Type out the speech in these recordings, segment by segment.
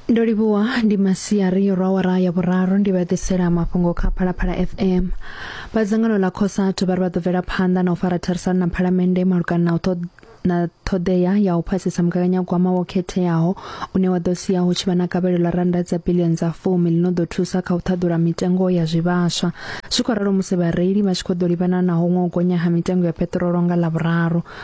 ndo livhuwa ndi masiari yo rwa wara ya vhuraru ndi vha ḓisela mafhungo kha phalaphala fm vha dzangano ḽa khosatu vha ri vha ḓo bvela phanḓa na u fara therisano na phalamennde malugana na u na ṱhoḓea ya u phasisa mugaganyagwama wo khetheaho une wa ḓo sia hu tshi vha na gavhelo ḽa rannda dza bilioni dza fumi ḽi no ḓo thusa kha u ṱhaḓula mitengo ya zwivhaswa zwi khou ralo musi vhareili vha tshi khou ḓo livhana na huṅwe u gonya ha mitengo ya peṱirolo nga ḽa vhuraru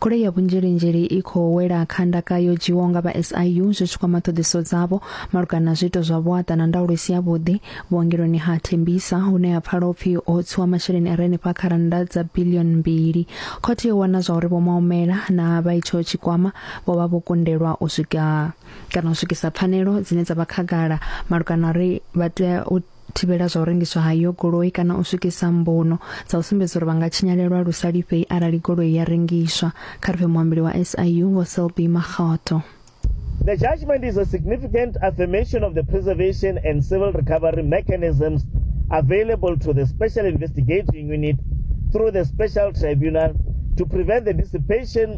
Khole ya vhunzhelinzheli i khou wela kha ndaka yo dzhiwaho nga vha SIU zwi tshi kwama ṱhoḓisiso dzavho malugana na zwiito zwa vhuaṱa na ndaulo i si yavhuḓi vhuongeloni ha Tembisa hune ha pfala upfi ho tsiwa masheleni a re henefha kha rannda dza bilioni mbili. Khothe yo wana zwa uri Vho Maumela na vha itsho tshikwama vho vha vho kundelwa u swika kana u swikisa pfanelo dzine dza vha khagala malugana na uri vha tea u thivhela zwa u rengiswa ha iyo goloi kana u swikisa mbuno dza u sumbedza uri vha nga tshinyalelwa lu sa lifhei arali goloi ya rengiswa, kha ri pfe muambeli wa SIU Vho Selby Makgotho. The judgment is a significant affirmation of the preservation and civil recovery mechanisms available to the Special Investigating Unit through the Special Tribunal to prevent the dissipation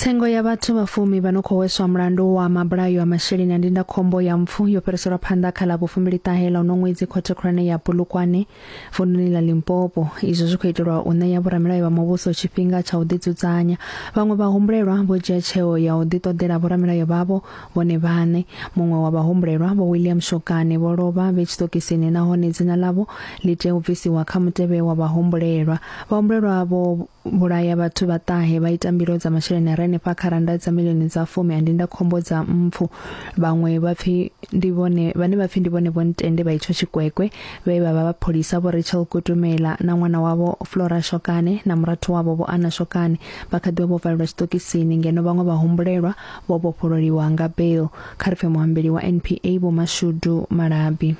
Tsengo ya vhathu vha fumi vha no khou hweswa mulandu wa mabulayo a masheleni a ndindakhombo ya mpfu yo fhiriselwa phanḓa kha ḽa vhufumbili ṱahe ḽa uno ṅwedzi khothe khulwane ya Bulukwane vunḓuni ḽa Limpopo izwo zwi khou itelwa u ṋea vhoramilayo vha muvhuso tshifhinga tsha u ḓidzudzanya vhaṅwe vha humbulelwa vho dzhia tsheo ya u ḓiṱoḓela vhoramilayo vhavho vhone vhaṋe muṅwe wa vhahumbulelwa vho William Shokane vho lovha vhe tshitokisini nahone dzina ḽavho ḽi tea u bvisiwa kha mutevhe wa vhahumbulelwa vhahumbulelwa vho vhulaya vhathu vha ṱahe vha ita mbilo dza masheleni a renefha kha randa dza milioni dza fumi a ndinda khombo dza mpfu vhaṅwe vha pfi ndi vhone vhane vha pfi ndi vhone vho ntende vha itsho tshikwekwe vhe vha vha vhapholisa vho Rachel Kutumela na ṅwana wavho Flora Shokane na murathu wavho vho Ana Shokane vha kha ḓiwa vho valelwa tshiṱokisini ngeno vhaṅwe vha humbulelwa vho vhofhololiwa nga bail kha ri pfe muhambeli wa NPA vho Mashudu Malabi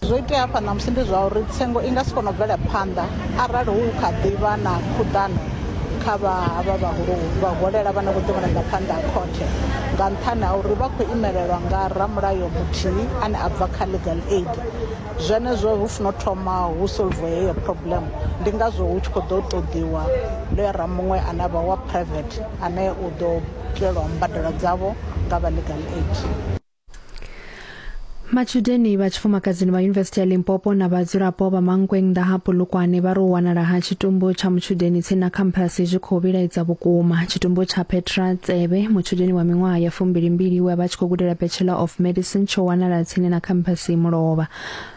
Zwo itea hafha ṋamusi ndi zwa uri tsengo i nga si kone u bvela phanḓa arali hu kha ḓi vha na khuḓano kha vha havha vhahulu vha holela vhane vho ḓi vhona nga phanḓa ha khothe nga nṱhani ha uri vha khou imelelwa nga ramulayo muthihi ane a bva kha legal aid zwenezwo hu funa u thoma hu solve heyo problem ndi ngazwo hu tshi kho ḓo ṱoḓiwa ḽo ya ra muṅwe ane avha wa private ane u ḓo itelwa mbadelo dzavho nga vha legal aid. matshudeni vha tshifumakadzini vha yunivesithi ya limpopo na vhadzulapo vha mankweng ḓa ha polokwane vha ri u wanala ha tshitumbu tsha mutshudeni tsini na khamphasi zwi khou vhilaedza vhukuma tshitumbu tsha petra tsebe mutshudeni wa miṅwaha ya fumbili mbili we a vha tshi khou gudela bachelor of medicine tsho wanala tsini na khamphasi mulovha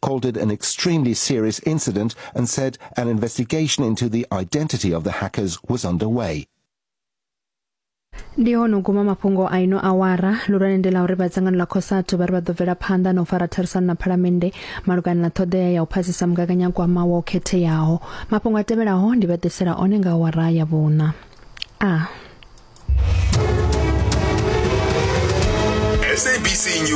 called it an extremely serious incident and said an investigation into the identity of the hackers was underway. ndi hono guma mafhungo a ino awara lulwane ndi la uri vha dzangano ḽa cosatu vha ri vha ḓo bvela phanḓa na u fara therisano na phalamennde malugana na ṱhoḓea ya u phasisa mugaganyagwama wa u khetheaho mafhungo a tevhelaho ndi vha ḓisela one nga awara ya vhuṋa a ah. SABC News.